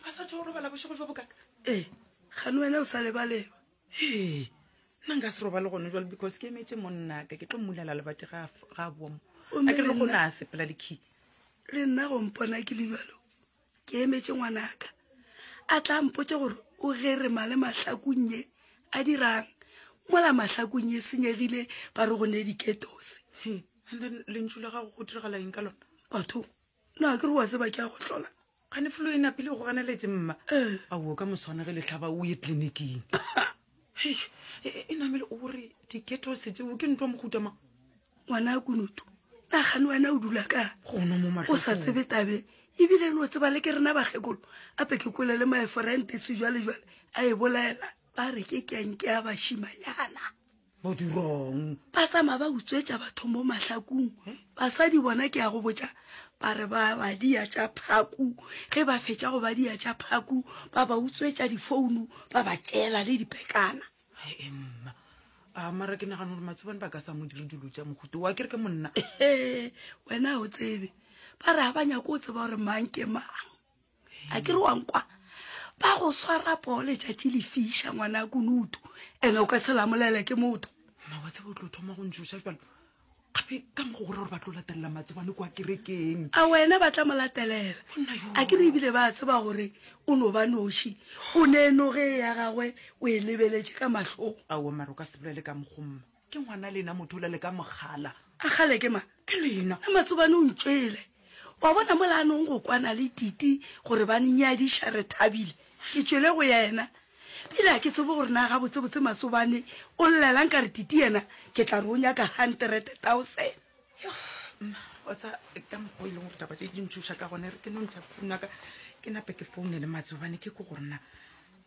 ba sa tho robala bošego jo bokaka ee gane wena o sa lebaleba ee nna nka se robale gone jale because ke emetse monnaka ke tlo mmulela lebate ga a boa mo a ke le go na sepela le key le nna go mpona ke lejalo ke emetse ngwanaka a tla mpotse gore o gere male mahlakonye a dirang mola mahlakonye senyegile ba re go ne diketose and then lentšu la gago go diragala eng ka lona batho na ke re wa tseba ke a go tlola gane flo e napile go ganeletse mma eh. a o ka moswana ge letlhaba o ye tleliniking e, e namele o re diketo se tseo ke ntwa mohuta mang ngwana a kunutu nagane wena o dula ka gono mo mago sa tsebe tabe ebile no tseba le ke rena bagekolo ape ke kole le maeforentese jwale jwale a e bolela ba re ke kenke ya bashimanyana modurong ba sama ba utswetša bathong bo mahlakung basadi bona ke ya go botša ba re ba badia tša phaku ge ba fetša go badia tša phaku ba ba utswetša difounu ba ba tšeela le dipekana mma a mara ke nagana gore matsobane ba ka sa mo dire dilo tša mohuto wa kere ke monna wena o tsebe ba re ga ba nyako o tseba gore mang ke mang a ke re wa nkwa ba go swara poo letšatši le fiša ngwana ya kunutu ene o ka se lamolele ke motho nna wa tseba o tlo thoma go ntšoša jalo gape ka mogo gore gore ba tlo latelela matsobane kwa kerekeng a wena ba tla mo latelela a ke re ebile ba tseba gore o no ba noši o ne noge e ya gagwe o e lebeletše ka mahlong ao maro ka sebolele ka mogomma ke ngwana lena motho o lele ka mogala a gale ke ma Ke lena le masobane o ntšwele. Wa bona mola a nong go kwana le Titi gore ba nnyadiša re thabile. Ke tšwele go yena. Bile ga ke tsebe gore na gabotsebotse masobane o llela nka re Titi yena ke tla re o nyaka hanterete taosene. Yoh, mma, wa tsa ka mokgwa o e leng gore taba tše di ntšhoša ka gona, e re ke no ntšha founaka ke nape ke founele masobane ke ko gore na